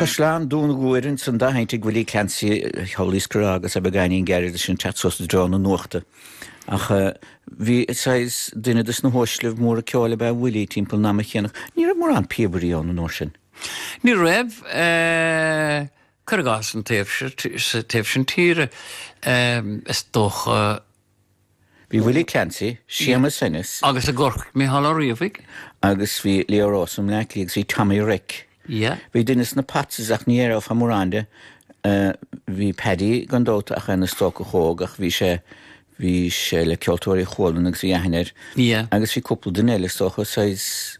Caisleán Dún Guaire ansan dá sheinnt ag Willie Clancy, Shaul Iskra agus é beagáinín gairid leis an teacht suas i dtreo na nuachta. Ach bhí saghas duine de sna huaislibh móra ceoil ab ea Willie timpeall an ama chéanna. Ní raibh mórán píobairí ann an uair sin. Ní raibh, cuir i gcás an taobh sin tíre is dócha. Bhí Willie Clancy, Séamus Ennis. Agus i gCorcaigh, Micheál Ó Riabhaigh. Agus bhí Leo Rowsome i mBleá Cliath agus bhí Tommy Reck. Yeah. Bhí duine de sna Potts ach ní aireofá mórán de. Bhí Paddy gan dabht ach ina stócach óg ach bhí sé, bhí sé le Ceoltóirí Chualann agus bhí aithne air. Yeah. Agus bhí cúpla duine eile is dócha, saghas.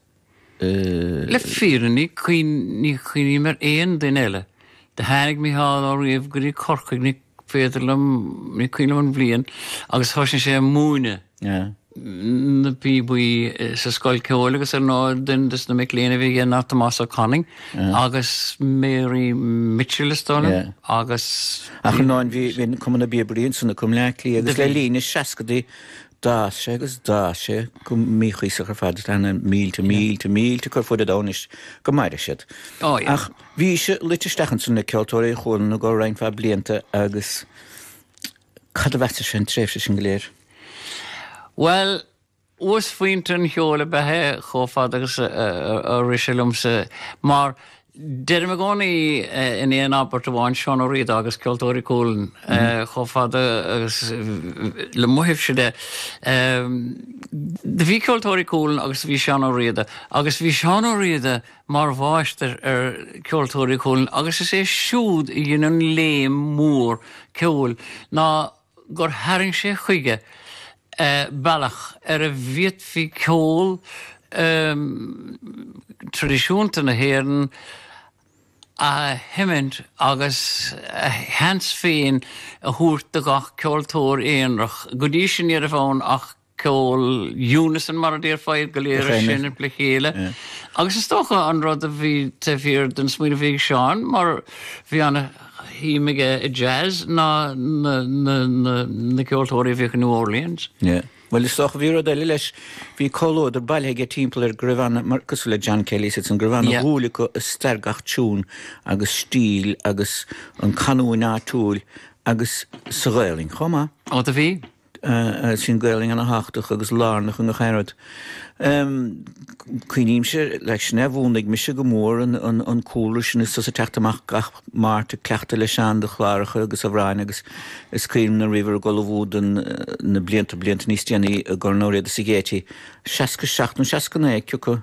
Le fírinne ní chuimhním ar aon duine eile. Do tháinig Micheál Ó Riabhaigh go dtí Corcaigh, ní féidir liom, ní cuimhin liom an bhliain, agus thosnaigh sé ag múineadh na bpíobaí sa scoil ceoil agus ar ndóigh duine de sna mic léinn a bhí aige ná Tomás Ó Canainn agus Mary Mitchell is dóigh liom agus Ach an áin bhí bhí cumann na bpíobairí ansan acu i mBleá Cliath agus le linn na seascaidí D'fhás sé agus d'fhás sé go míchuíosach ar fad. Tá na mílte, mílte, mílte acu ar fuid an domhain anois, go maire siad. Ach bhís-se luite isteach ansan le Ceoltóirí Chualann i gcomhair roinnt mhaith blianta agus cad a mheasais-se den tréimhse sin go léir? Bhuel, uasphointe an cheoil ab ea é chomh fada agus a rith sé liomsa mar Deirim i gcónaí in aon abairt amháin Seán Ó Riada agus Ceoltóirí Cualann chomh fada agus le mo thaobhsa de. Do bhí Ceoltóirí Cualann agus do bhí Seán Ó Riada, agus bhí Seán Ó Riada mar mháistir ar Cheoltóirí Cualann agus is é siúd a dhein an léim mhór ceoil ná gur tharraing sé chuige bealach ar a bhféadfaí ceol traidisiúnta na hÉireann a sheimint agus a sheans féin a thabhairt do gach ceoltóir aonarach. Go dtí sin ní raibh ann ach ceol unison mar a déarfá iad go léir ag seinm le chéile agus is dócha an rud a bhí taobh thiar den smaoineamh a bhí ag Seán mar bhí an-shuim aige i jazz ná na ceoltóirí a bhíodh i New Orleans. Yeah. Bhuel is dócha bhí rud eile leis bhí comhluadar bailithe aige timpeall air go raibh ana, mar cosúil le John Kelly is iadsan go raibh ana Yeah. dhúil acu i stair gach tiún agus stíl agus an canúint áitiúil agus sa Ghaelainn chomh maith. Ó do bhí. is an Ghaolainn ana-thábhachtach agus lárnach i ngach aon rud. Cuimhnímse leis sin é a mhúnlaigh mise go mór an cúlra sin is tusa ag teacht amach gach Máirt ag cleachtadh le Seán do chláracha agus amhráin agus is cuimhin liom nuair a bhíobhair ag ullmhú don na blianta blianta níos déanaí i gcomhair Ó Riada sa Gaiety 67 nó 69 ciocu